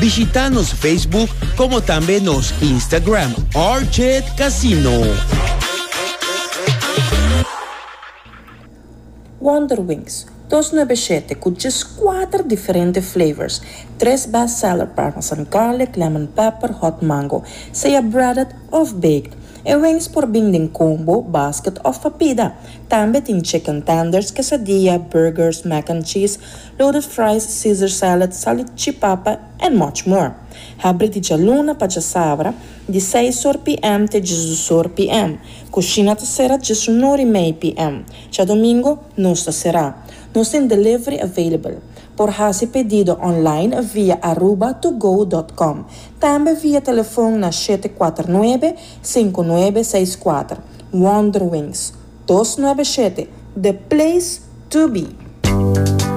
Bishita nos Facebook como tambe nos Instagram Orchid Casino. Wonder Wings, dos nuebe shete cu djes cuater diferente flavors, tres best seller parmesan garlic, lemon pepper, hot mango, sea breaded of baked. E wings por bin den combo, basket of papida. Tambe tin chicken tenders, quesadilla, burgers, mac and cheese, Loaded fries, Caesar salad, solid chipapa and much more. Habri di djaluna pa djasabra, di seis or PM te djisdos or PM. Cushina ta cera djesun or y mei PM. Djadomingo nos ta cera. Nos tin delivery available. Por haci pedido online via aruba to go dot com. Tambe via telefon na shete kuater nuebe, sinku nuebe seis kuater. Wonderwings. Dos nuebe shete, the place to be!